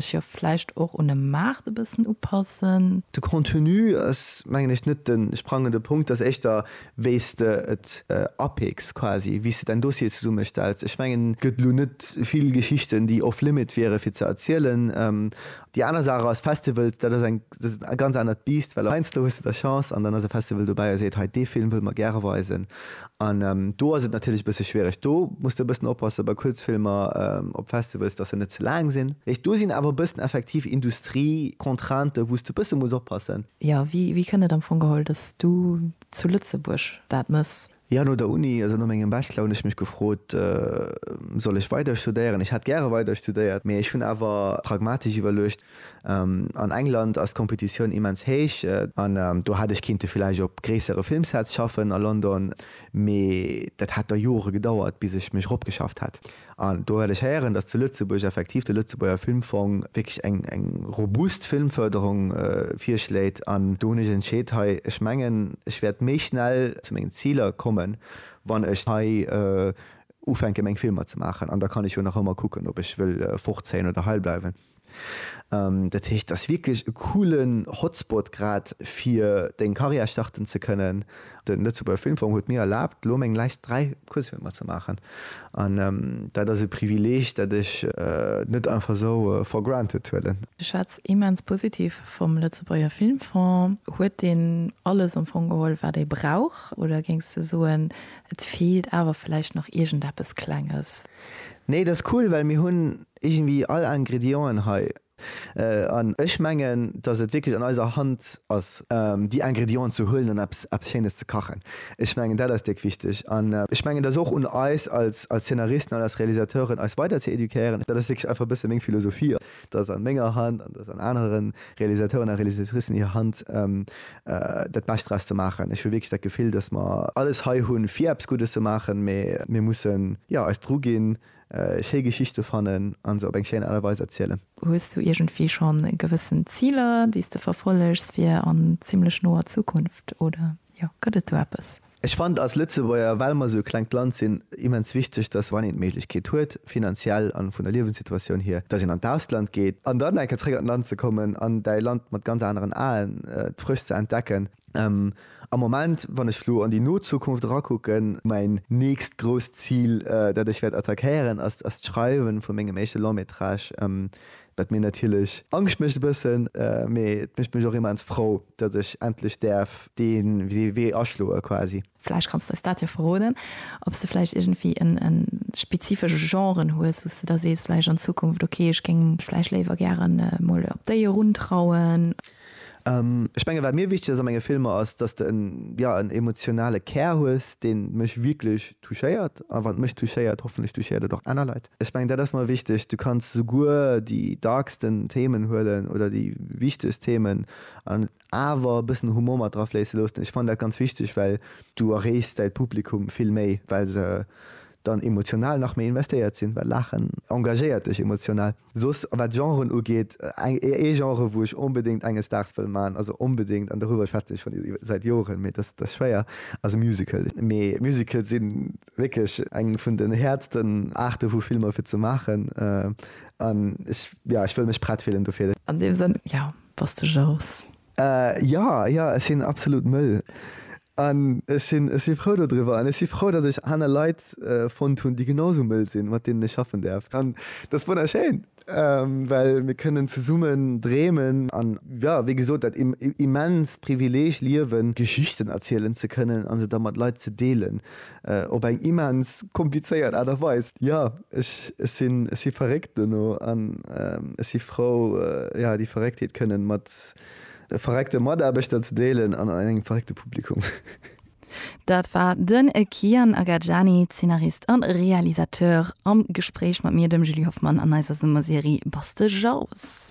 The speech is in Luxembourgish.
Sech jo vläicht och un e Maart e bëssen upassen. De Contenu ass, mengen ech, net de sprangende Punkt. Et ass éischter, wéi s de et apeeks quasi, wéi s de däin Dossier zesummestells. Ech mengen, et gëtt elo net vill Geschichten, déi off-limit wiere fir ze erzielen. Déi aner Saach ass, Festivals, dat ass eng dat ass e ganz anert Biisst, well heiansdo hues de da Chance an dann ass e Festival dobäi a seet, hei dee Film wëlle mer gäre weisen. An do ass et natierlech e bësse schwiereg. Do muss de e bëssen oppasse bei Kuerzfilmer op Festivals, datt se net ze laang sinn. Heescht do sinn awer e bëssen effektiv Industrie-Contraintë wou s de e bësse muss oppassen. Jo, wéi kënn et am Fong geholl, datt s du zu Lëtzebuerg dat mëss? Jo, no der Uni, also no mengem Bachelor, hunn ech mech gefrot, Soll ech weider studéieren? Ech hätt gäre weider studéiert, mee ech hunn awer pragmatesch iwwerluecht, An England ass d'Kompetitioun immens héich, an do hätt ech kinnte villäicht op gréissere Filmsets schaffen a London, mee dat hätt da Jore gedauert, bis ech mech eropgeschafft hätt. An do hat ech héieren, dass zu Lëtzebuerg effektiv de Lëtzebuerger Filmfong wierklech eng robust Filmförderung virschléit. An do hunn ech entscheet, hei, ech mengen, ech wäert méi schnell zu mengen Ziler kommen, wann ech hei ufänke meng Filmer ze maachen. An da kann ech jo nach ëmmer kucken, ob ech wëll fortzéien oder hei bleiwen. Dat heescht, et ass wierklech e coolen Hotspot grad fir deng Carrière starten ze kënnen. Den Lëtzebuerger Filmfong huet mir erlaabt elo meng läischt 3 Kuerzfilmer ze maachen an dat ass e Privileeg dat ech net einfach esou for granted huelen. Ech schwätz immens positiv vum Lëtzebuerger Filmfong. Huet deen alles am Fong geholl wat ee brauch oder géings de soen et feelt awer vläicht nach iergendeppes Klenges? Nee, dat ass cool well mir hunn Iergendwi all Ingredienten hei. An ech mengen, dass et wierklech an eiser Hand ass, déi Ingredienten ze huelen an eppes, eppes Schéines ze kachen. Ech mengen, dat ass déck wichteg. An ech mengen, et ass och un eis als, als Zeenaristen an als Realisateuren, eis weider ze éduquéieren. Dat ass wierklech einfach e bësse meng Philosophie, dass an menger Hand an dass an anere Realisateuren a Realisatricen hir Hand, dat Bescht draus ze maachen. Ech hu wierklech dat Gefill, dass mer alles hei hunn, fir eppes Guddes ze maachen, mä mir mussen, jo, eis druginn, schéi Geschichte fannen a se op eng schéin Aart a Weis erzielen. Hues du iergendwéi schonn gewëssen Ziler, déi s de verfollegs fir an zimmlech noer Zukunft, oder jo, gëtt et do eppes? Ech fannen als Lëtzebuerger, well mer esou e klengt Land sinn, immens wichteg, dass wann een d'Méiglechkeet huet, finanziell a vun der Liewenssituatioun hier, dass een an d'Ausland geet an dann eng Kéier zréck an d'Land ze kommen an däi Land mat ganz aneren Aen frësch ze entdecken. Am Moment, wann ech elo an déi no Zukunft erakucken, mäin nächst grousst Zil, dat ech wäert attackéieren, ass ass d'Schreiwen vu mengem éischte Long métrage, wat mir natierlech Angscht mécht e bëssen, mee et mécht mech och immens frou, datt ech endlech däerf dee Wee aschloe quasi. Vläicht kanns de eis dat jo verroden, ob s de vläicht iergendwéi e spezifesche Genre hues, wou s de da sees vläicht an Zukunft, ok, ech géing mech vläicht léiwer gären emol op déi eruntrauen. Ech mengen, wat mir wichteg ass a menge Filmer, ass, dass de en, jo, en emotionale Kär hues, dee mech wierklech touchéiert. A wann et mech touchéiert, hoffentlech touchéiert et och aner Leit. Ech mengen, dat ass mer wichteg. Du kanns souguer déi darksten Themen huelen oder déi wichtegst Themen an et awer e bëssen Humor mat dra fléisse loossen. Ech fannen dat ganz wichteg, well du erreechs däi Publikum vill méi, well se dann emotional nach méi investéiert sinn, well Laachen engagéiert dech emotional. Soss wat d'Genren ugeet, ee Genre wou ech onbedéngt enges Daags wëll man, also onbedéngt, an dorüwer schwätzen ech schon säit Joren, mee dass dass schwéier, ass e Musical. Mee Musicale si wierklech eng vun den häertsten Aarte vu Filmer fir ze maachen an ech, jo, ech wëll mech prett fillen dofir. An deem Sënn, jo, bass de Jous. Jo, jo, ech sinn absolut mëll. An ech sinn, ech si frou dodriwwer. An ech si frou, datt ech aner Leit fonnt hunn, déi genau esou mëll sinn, mat deenen ech schaffen däerf. An dat ass wonnerschéin, well mir kënnen zesummen dreemen an, jo, wéi gesot, dat immenst Privileeg liewen, Geschichten erzielen ze kënnen a se da mat Leit ze deelen, Op eng immens komplizéiert Aart a Weis. Jo, ech sinn, ech si verréckt dono an ech si frou, jo, déi Verrécktheet kënnen mat verréckte Mataarbechter ze deelen an an engem verréckte Publikum. Dat war den Kian Agajani, Zeenarist a Realisateur, am Gespréich mat mir, dem Julie Hoffmann, an eiser Summerserie Bass de Jauws.